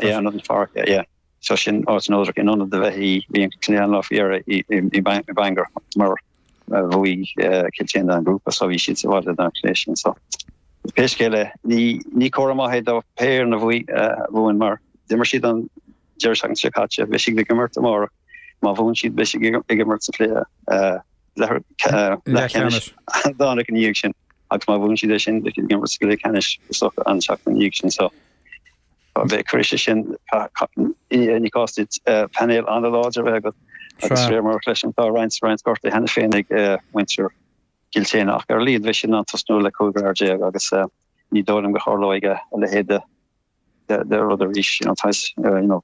Yeah ionad an pháirc yeah so sin áit neodrach in ionad a bheith í bhí an cluiche an lá faoi dheireadh i i Bangor mar bhuaigh Kiltane an grúpa so bhí siad sa bhaile don chluiche sin so pé scéal é ní ní comhartha maith é do pé foireann a bhuaigh bhuann mar d'imir siad an deireadh seachtaine seo caite beidh siad ag imirt amárach má bhuann siad beidh siad ag imirt sa chluiche leathcheannais Domhnach ina dhiaidh sin agus má bhuann siad é sin beidh siad ag imirt sa cluiche ceannais so an tseachtain ina dhiaidh sin so Á beidh cuireann sé sin ní cás duit painéal an-láidir a bheith agat agus fear marbh leis an tá roinnt roinnt gortaithe cheana féin ag muintir Chill tSéadhna ach ar a laghad beidh siad in ann tosnú le 15 fhear agus ní dóigh liom go dtarlóidh a leithéid de rud arís, you know,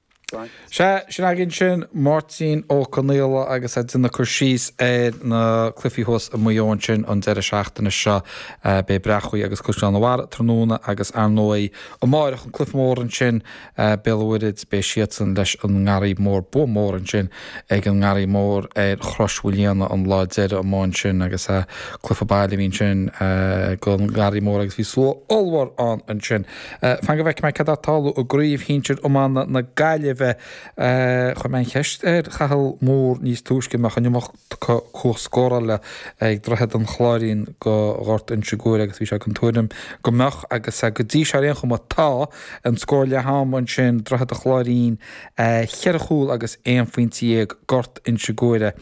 Sea, sin againn sin Máirtín Ó Conaola agus é ag déanamh cur síos ar na cluichí thuas i Maigh Eo ansin an deireadh seachtaine seo. Beidh Bréachmhaigh agus Caisleán an Bharraigh tráthnóna agus ar ndóigh amárach an cluiche mór ansin, Béal Mhuirthead, beidh siadsan leis an nGarraí Mór. Bua mór ansin ag an nGarraí Mór ar Chrois Mhaoilíona an lá deiridh amach ansin agus cluiche baile a bhí ansin ag an nGarraí Mór agus bhí slua ollmhór ann ansin. Fan go bhfeicfidh mé céard atá ag tarlú i gcraobh shinsir iomána na Gaillimhe. Chuir mé an cheist ar Chathal Moore níos túisce an mbeadh an iomarca cumhacht scórála ag Droichead an Chláirín do Ghort Inse Guaire agus bhí sé den tuairim go mbeadh agus go dtí seo ar aon chuma tá an scór leath ama ansin Droichead an Chláirín cheithre chúl agus aon phointe dhéag Gort Inse Guaire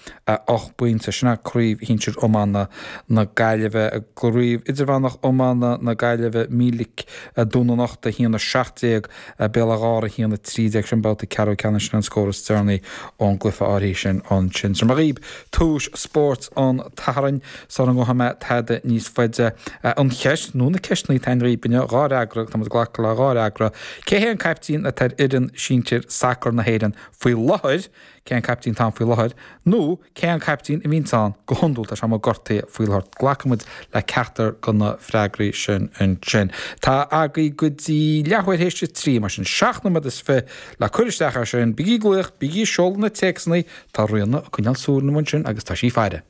ocht bpointe. Sin é craobh shinsir iomána na Gaillimhe. Craobh Idirmheánach Iomána na Gaillimhe Míleac Dún an Uchta 1-17, Béal Átha Ghártha 1-13, sin babhta ceathrú ceannais sin an scór is deireanaí ón gcluiche áirithe sin ansin. Tabharfaidh mé dhaoib tomhais spóirt an tSathairn sula ngabhfaidh mé tada níos faide a an cheist nó na ceisteannaí atá ann dhaoib inniu dhá fhreagra ag tá muid glacadh le dhá fhreagra. Cé hé an caiptín atá ar fhoireann sinsir sacar na hÉireann faoi láthair? Cé an caiptín atá ann faoi láthair? Nó. Cé an caiptín a bhíonns ann go hiondúil? Tá sé amuigh gortaithe faoi láthair. Glacfaidh muid le ceachtar de na freagraí sin ansin. Tá agaí go dtí leathuair théis a trí, mar sin seacht nóiméad is fiche le cur isteach air sin. Bígí glaoch, bígí seoladh na téacsanna, tá Ríona ag coinneáil súil inniu ansin agus tá sí faire.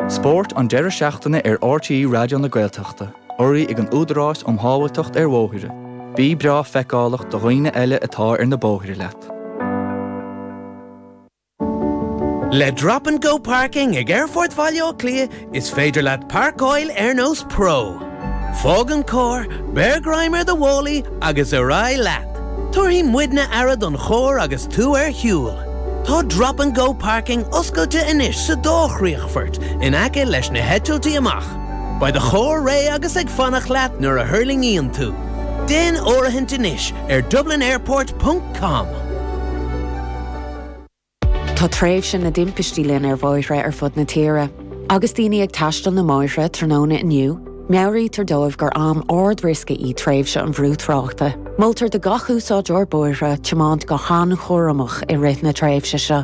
Spórt an deireadh seachtaine ar RTÉ Raidió na Gaeltachta, urraithe ag an Údarás um Shábháilteacht ar Bhóithre, Bí breá feiceálach do dhaoine eile atá ar na bóithre leat. Le Drop and Go Parking ag Aerfort Bhaile Átha Cliath is féidir leat páirceáil ar nós pro. Fág an carr, beir greim ar do mhálaí agus ar aghaidh leat! Tabharfaidh muidne aire don charr agus tú ar shiúl. Tá 'Drop and Go Parking' oscailte anois sa dá chríochfort in aice leis na heitiltí amach. Beidh do charr réidh agus ag fanacht leat nuair a thuirlingíonn tú. Déan áirithint anois ar dublinairport ponc com. Tá tréimhse na dtimpistí linn ar bhóithre ar fud na tíre. Agus daoine ag taisteal na mbóithre tráthnóna inniu, meabhraítear dóibh gur am ard-riosca í tréimhse an bhrú tráchta. Moltar do gach úsáideoir bóithre tiomáint go han-chúramach i rith na tréimhse seo.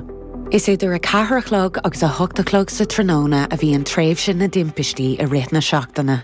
Is idir 4 a chlog agus 8 a chlog sa tráthnóna a bhíonn tréimhse na dtimpistí i rith na seachtaine.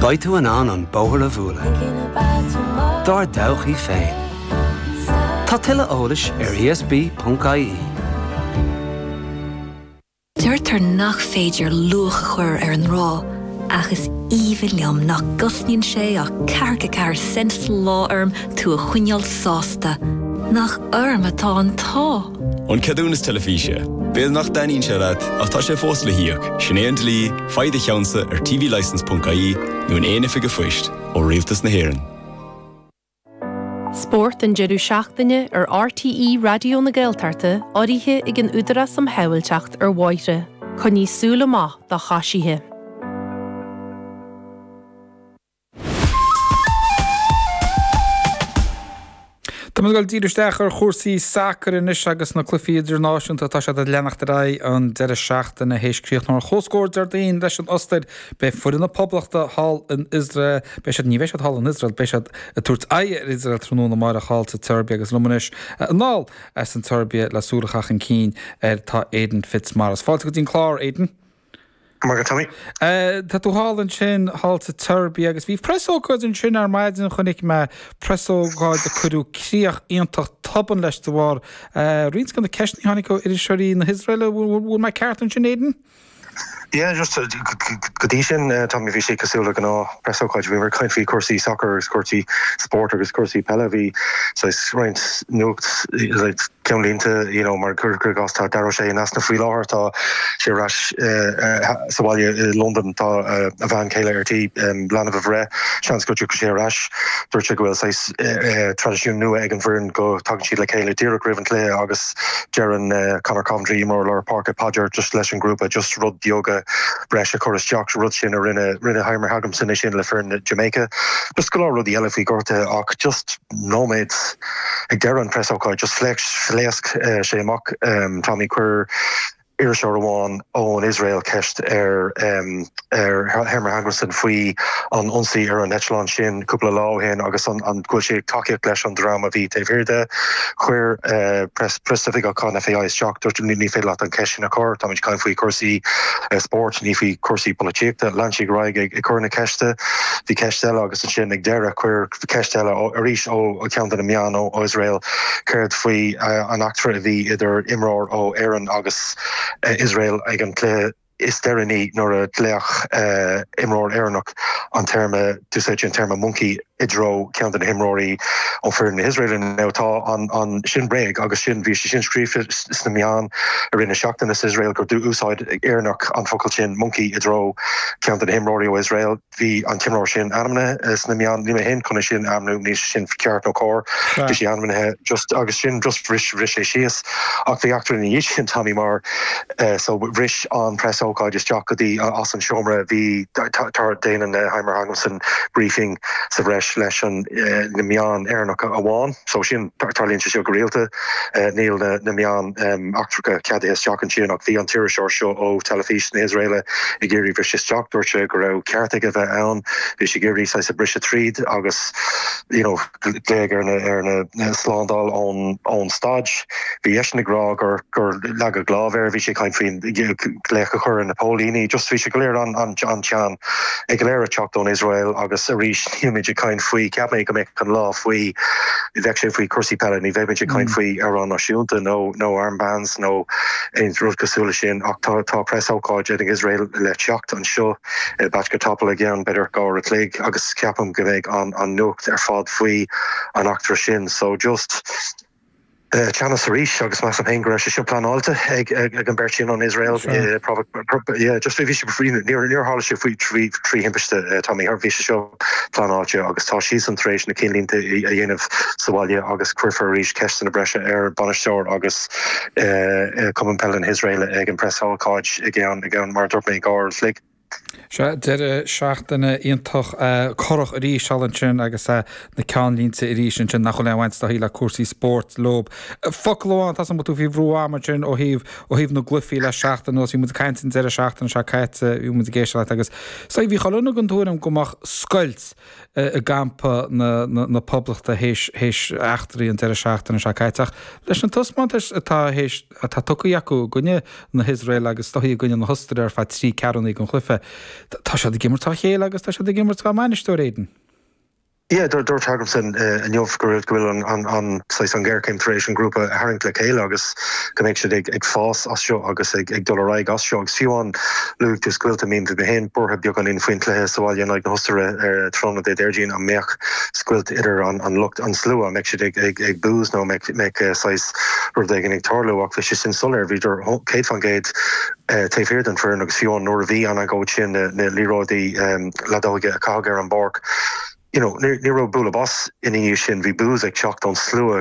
Beidh tú in ann an bóthar a mhúnlú dár dtodhchaí féin. Tá tuilleadh eolais ar ESB.ie. Deirtear nach féidir luach a chur ar an ngrá, ach is aoibhinn liom nach gcosnaíonn sé ach ceathracha ceathair cent sa lá orm tú a choinneáil sásta. Nach orm atá an t-ádh! An ceadúnas teilifíse. B'fhéidir nach dtaitníonn sé leat, ach tá sé fós le híoc. Sin é an dlí. Faigh do cheannsa ar tvlicense ponc ie nó in aon oifig an phoist ó Rialtas na hÉireann. Spórt an deireadh seachtaine ar RTÉ Raidió na Gaeltachta urraithe ag an Údarás um Shábhailteacht ar Bhóithre. Coinnigh súil amach do choisithe. Tá muid ag dul díreach isteach ar chúrsaí sacair anois agus na cluichí idirnáisiúnta atá siad ag leanacht ar aghaidh an deireadh seachtaine. Théis críochnú ar comhscór Déardaoin leis an Ostair, beidh foireann na Poblachta thall in Iosrael, beidh siad, ní bheidh siad thall in Iosrael, beidh siad ag tabhairt aghaidh ar Iosrael tráthnóna amárach thall sa tSeirbia agus liom anois anall as an tSeirbia le súil a chaitheamh chun cinn air tá Aidan Fitzmaurice. Fáilte go dtí an clár, Aidan. Magadh Tommy. Tá tú thall ansin, thall sa tSeirbia, agus bhí presócáid ansin ar maidin, chonaic mé presócáid a cuireadh críoch iontach tobann leis de bharr roinnt de na ceisteanna a tháinig ó iriseoirí na hIosraele. Bhfuil mé ceart ansin, Aidan? Yeah, go dtí sin, Tommy, bhí sé cosúil le gnáth presócáid. Bhí muid ag caint faoi chúrsaí sacair agus cúrsaí spóirt agus cúrsaí peile. Bhí, saghas, roinnt nuacht, Ceannlínte, you know, mar gur de ghnás tá Dara O'Shea in easnamh faoi láthair, tá sé ar ais sa bhaile i Londain, tá a bhean chéile ar tí leanbh a bhreith, seans go dtiocfaidh sé ar ais, dúirt sé go bhfuil saghas traidisiún nua ag an bhfoireann go dtagann siad le chéile díreach roimh an cluiche agus deireann Conor Coventry, imreoir lár páirce, paidir just leis an ghrúpa, just rud beag breis a chur isteach sa rud sin a rinne rinne Heimir Hallgrímsson é sin le foireann Jamaica, just go leor rudaí eile faoi gortuithe ach just. nóiméad. Ag deireadh an preasócáid just phléasc sé amach. Tommy, chuir iriseoir amháin ón Iosrael ceist ar Heimir Hallgrímsson faoi an ionsaí ar an eitleán sin cúpla lá ó shin agus an bhfuil sé ag tacaíocht leis an dream a bhí taobh thiar de. Chuir preasoifigeach an FAI isteach, dúirt ní féidir leat an cheist sin a chur, táimid ag caint faoi chúrsaí spóirt, ní faoi chúrsaí polaitíochta. Lean sí ar aghaidh ag cur na ceiste. Bhí ceist eile agus ansin ag deireadh chuir. Ceist eile arís ó cheann de na meáin ó Iosrael, céard faoi an eachtra a bhí idir imreoir ó Éirinn agus Iosrael ag an gcluiche is deireanaí nuair a ghlaoigh imreoir Éireannach an téarma, d'úsáid sé an téarma monkey i dtreo ceann de na himreoirí ó foireann na hIosraele. Now tá an, sin bréag agus sin, bhí sé sin scríofa sna meáin i rith na seachtaine sa Iosrael gur d'úsáid Éireannach an focal sin monkey i dtreo ceann de na himreoirí ó Iosrael. Bhí an t-imreoir sin ainmnithe sna meáin, níl mé fhéin chun é sin a ainmniú, níl sin ceart nó cóir, bhí sé ainmnithe just agus sin just bhris bhris sé síos. Ach bhí eachtra ina dhiaidh sin, Tommy, mar so bhris an preasócáid isteach go dtí as an seomra, bhí tar déanann Heimir Hallgrímsson briefing sa bhreis leis an na meáin Éireannacha amháin, so sin tarlaíonn sé seo go rialta, níl na meáin. eachtracha ceadaithe isteach ansin ach bhí an t-iriseoir seo ó Teilifís na hIosraele ag iarraidh briseadh isteach. Dúirt sé go raibh ceart aige bheith ann. Bhí sé ag iarraidh saghas a briseadh tríd agus you know glaodh ar na ar na slándáil ón ón staid. Bhí eisean ag rá gur gur leagadh lámh air. Bhí sé ag caint faoi ghlaoch a chur ar na póilíní. Just bhí sé go léir an an an-teann é go léir ag teacht ón Iosrael agus arís beimid ag caint faoi, cheap mé go mbeadh an lá faoi, bheadh sé faoi cúrsaí peile, ní bheimid ag caint faoi amhráin náisiúnta nó nó armbands nó aon rud cosúil leis sin, ach tá tá preasócáid ag an Iosrael le teacht anseo, i Bačka Topola i gceann, b'fhéidir dhá uair a chloig, agus ceapaim go mbeidh an an nuacht ar fad faoi an eachtra sin, so just. teannas arís agus measaim féin go raibh sé seo pleanáilte ag ag an beirt sin ón Iosrael Sure. eh, probably pro- pro- pro- yeah, just bhí sé faoi- níor níor níor tharla sé faoi trí trí thimpiste eh, Tommy Her- bhí sé seo pleanáilte agus tá siadsan tar éis na cinnlínte i- a dhéanamh sa bhaile agus cuirfear arís ceisteanna breise ar bainisteoir agus eh, eh, cumann peile na hIosraele ag an preas-ócáid i gceann i gceann mar a dúirt mé dhá uair an chloig. Sea, deireadh seachtaine iontach corrach arís thall ansin agus na ceannlínte arís ansin nach bhfuil aon bhaint dá shaol le cúrsaí spóirt leob. Focal amháin, tá a fhios agam go bhfuil tú faoi bhrú ama ansin ó thaobh, ó thaobh na gcluichí le seachtain anuas. Bhí muid ag caint an deireadh seachtaine seo caite, bhí muid ag éisteacht leat agus, sea, bhí chuile dhuine den tuairim go mbeadh scoilt i gcampa na, na, na Poblachta théis, théis eachtraí an deireadh seachtaine seo caite ach leis na taispeántais atá théis, atá tugtha acu i gcoinne na hIosraeile agus go háirithe i gcoinne na hOstaire ar feadh trí ceathrúna an chluife. Tá siad ag imirt dá chéile agus tá siad ag imirt dá mbainisteoir, Aidan. Yeah, dúirt Hallgrímsson inniu go raibh, go bhfuil an, an, an, saghas an ghéarchéim tar éis an grúpa a tharraingt le chéile agus go mbeidh siad ag, ag fás as seo agus ag, ag dul ar aghaidh as seo agus fiú amháin luaigh tú scoilt, I mean bhí mé féin buartha beagáinín faoin gcluiche sa bhaile in aghaidh na hOstaire ar tráthnóna Dé Déardaoin an mbeadh scoilt idir an, an lucht, an slua, an mbeadh siad ag, ag, ag boos nó an mbeadh, mbeadh saghas. rud éigin ag tarlú ach bhí sé sin soiléir, bhíodar 100% taobh thiar den fhoireann agus fiú nuair a bhí an agóid sin na na liathróidí leadóige a caitheadh ar an bpáirc, you know, ní raibh bualadh bos ina dhiaidh sin, bhí boos ag teacht ón slua.